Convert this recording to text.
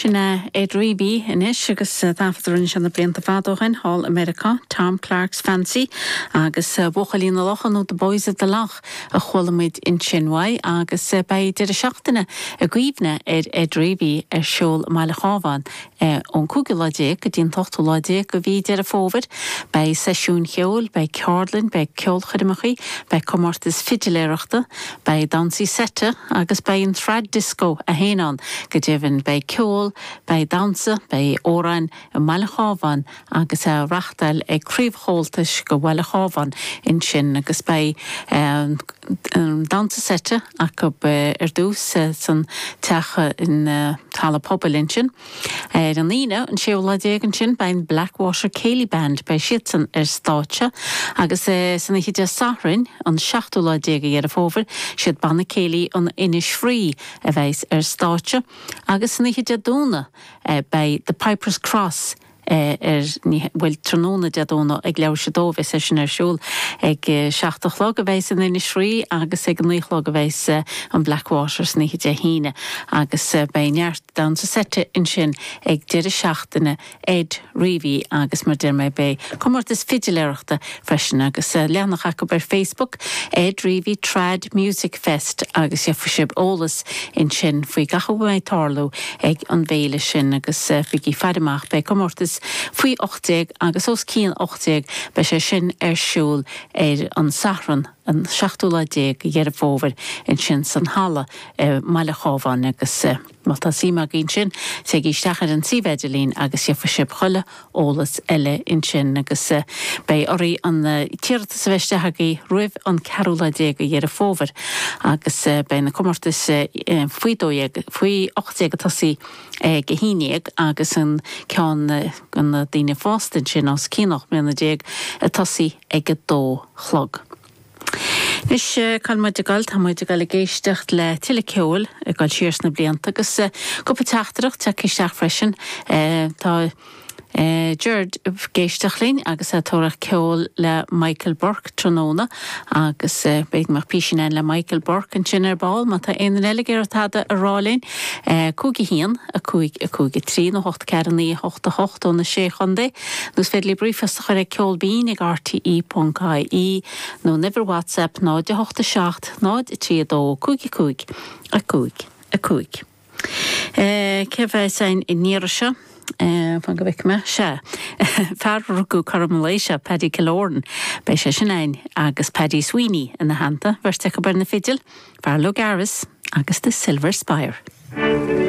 Sin é Ed Reavy anois agus taifead a rinne sé na blianta fada ó shin thall i Meiriceá, Tom Clark's Fancy agus Buachaillí na Locha nó The Boys of the Lough a chuala muid ansin uaidh agus beidh deireadh seachtaine i gcuimhne ar Ed Reavy ar siúl i mbaile an Chabháin é ón cúigiú lá déag go dtí an t-ochtú lá déag de mhí Deireadh Fómhair. Beidh seisiúin cheoil, beidh ceardlainn, beidh ceolchoirmeacha, beidh comórtais fidiléireachta, beidh damhsaí seite agus beidh an Trad Disco féin ann. Go deimhin beidh ceol, beidh damhsa, beidh amhráin i mbaile an Chabháin agus á reachtáil ag Craobh Chomhaltais de bhaile an Chabháin ansin agus beidh an damhsa seite acu ar dtús san teach halla pobail ansin ar an Aoine an séú lá déag ansin beidh an Blackwater Céilí Band beidh siadsan ar stáitse agus san oíche Dé Sathairn an seachtú lá déag de Dheireadh Fómhair is iad Banna Céilí an Inis Fraoigh a bheas ar stáitse agus san oíche Dé Domhnaigh beidh The Pipers Cross ar an, bhuel, tráthnóna Dé Domhnaigh ag leathuair tar éis a dó a bheas sé sin ar siúl ag a seacht a chlog a bheas an Inis Fraoigh agus ag a naoi a chlog a bheas an Blackwater san oíche Dé hAoine agus beidh neart damhsa seite ansin ag deireadh seachtaine Ed Reavy agus mar a deir mé beidh comórtas fidiléireachta freisin agus leathanach acu ar Facebook Ed Reavy Trad Music Fest agus gheobhaidh sibh eolas ansin faoi gach a mbeidh ag tarlú ag an bhféile sin agus bígí ag faire amach beidh comórtais faoi 18 agus os cionn 18 beidh sé sin ar siúl ar an Satharn an seachtú lá déag de Dheireadh Fómhair ansin san halla i mbaile an Chabháin agus. Má tá suim agaibh ansin, téigí isteach ar an suíomh idirlín agus gheobhaidh sibh chuile eolas eile ansin agus beidh oraibh an t-iarratas a bheith istigh agaibh roimh an ceathrú lá déag de Dheireadh Fómhair agus beidh na comórtais faoi dó dhéag, faoi ocht déag ag tosaí ag a haon déag agus an ceann do na daoine fásta ansin os cionn ocht mbliana déag ag tosaí ag a dó a chlog. Anois cáil muid ag gol, tá muid ag gol ag éisteacht le tuilleadh ceoil ag gol siar sna blianta agus cúpla teachtaireacht tagtha isteach freisin. Tá Gerard ag éisteacht linn agus ag tóraíocht ceol le Michael Burke tráthnóna agus beidh agam písín amháin le Michael Burke ansin ar ball má tá aon duine eile ag iarraidh tada a rá linn. 51, 5, 5, 3 nó 8, 4, 9, 8, 8 ó na sé chontae. Nó is féidir libh ríomhphost a chur ag Ceol Binn ag RTÉ.ie nó an uimhir WhatsApp 08 7 0 3 2 5 5 5 5. Cé a bheas ann an iarraidh seo? fan go bhfeice mé, sea, fear a rugadh cothrom an lae seo, Paddy Killoran, beidh sé sin ann agus Paddy Sweeney ina theannta, beirt acu ar na fidil, Farrell O'Gara's agus The Silver Spire.